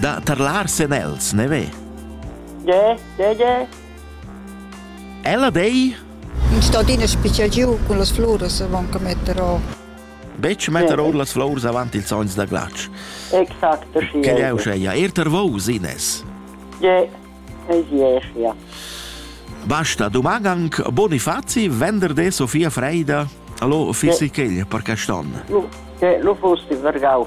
Da tarlar sen els, ne ve? Ge, ge, ge. Ella dei? In stadina special giu cun las flores van che metter o. Betg metter ord las flores avant ils sogns da glatsch. Exact, sì. Che è usceia? Er ter vos, Ines? Ge, es ieschia. Basta, domani anche Bonifazi, venerdì Sofia Freida, allo fisichel per quest'anno. Lo, che lo fosti vergau.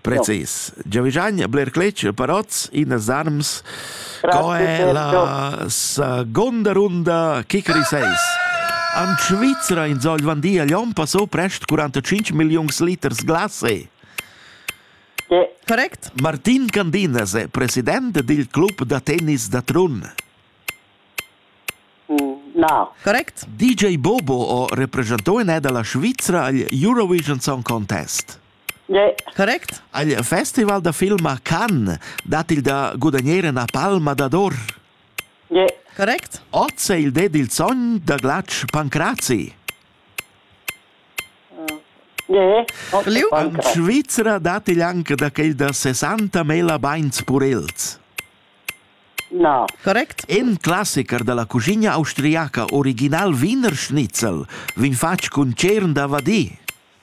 Precis. Giavischagn bler cletg per oz in zarms. Co è la seconda runda Kickery 6? An Svizra in Zogl van di a Lyon passo prest 45 milliuns liters glase. Correct. Martin Candinas è president dil club da tennis da Trun. No. Correct. DJ Bobo o representò in è dalla Svizra agl Eurovision Song Contest. Correct? Il festival da film a Cannes dat il da gudagnare una palma d'ador. Correct? Oz è il det il sogn da Glatsch Pancrazi. Liu? In Svizzera dat il anche da quel da 60 mela beins purels. No. Correct? In classiker dalla cucina austriaca original Wiener Schnitzel vin fatg cun cern da vadì.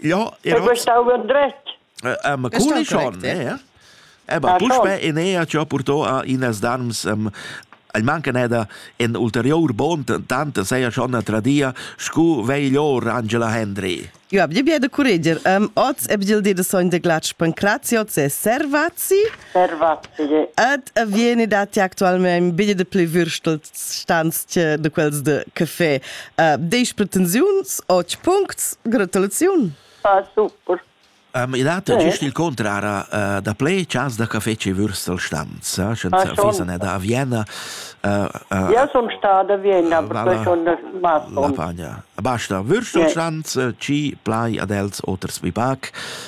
Ja, ja. Du bist auch dretg. Äh, ma culi schon, ne? Eh, ba, puspe in ea ci ho purtò a inas darms um, el manca neda in ulterior bond tante sei schon a tradia scu veglior Angela Hendry. Jo ab di biede curreger. Um, oz eb gil di de sogn de glac pancraziots e servazzi. Ed vieni dati actualmente un biglie de plü würstel stanzche de quels de caffè. Uh, Disch pretensiuns, otg puncts, gratulaziun. Ah, super. Um, il hat giust il contrara uh, da ple chas da caffè che Würstel stanza, senza fisa ne da Vienna. Uh, uh, Io sono stata a Vienna, uh, perché sono da Masson. La pagna. Basta, Würstel stanza, ci plai ad els oters vi pac,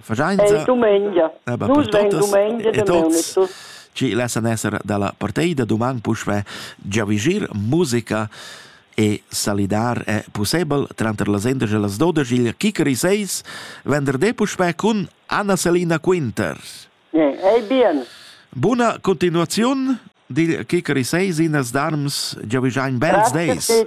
Fagiainsa dumengia. Nus vegn dumengia da Neunitus. Ci lessan esser dalla parteida duman puschve giavigir musica e salidar è possibel tranter las 11 e las 12 il Kikeri 6 venderdi puschve cun Anna Selina Quinter. Yeah, hey bien. Buna continuaziun dil Kikeri 6 in as darms giavigiain bels days.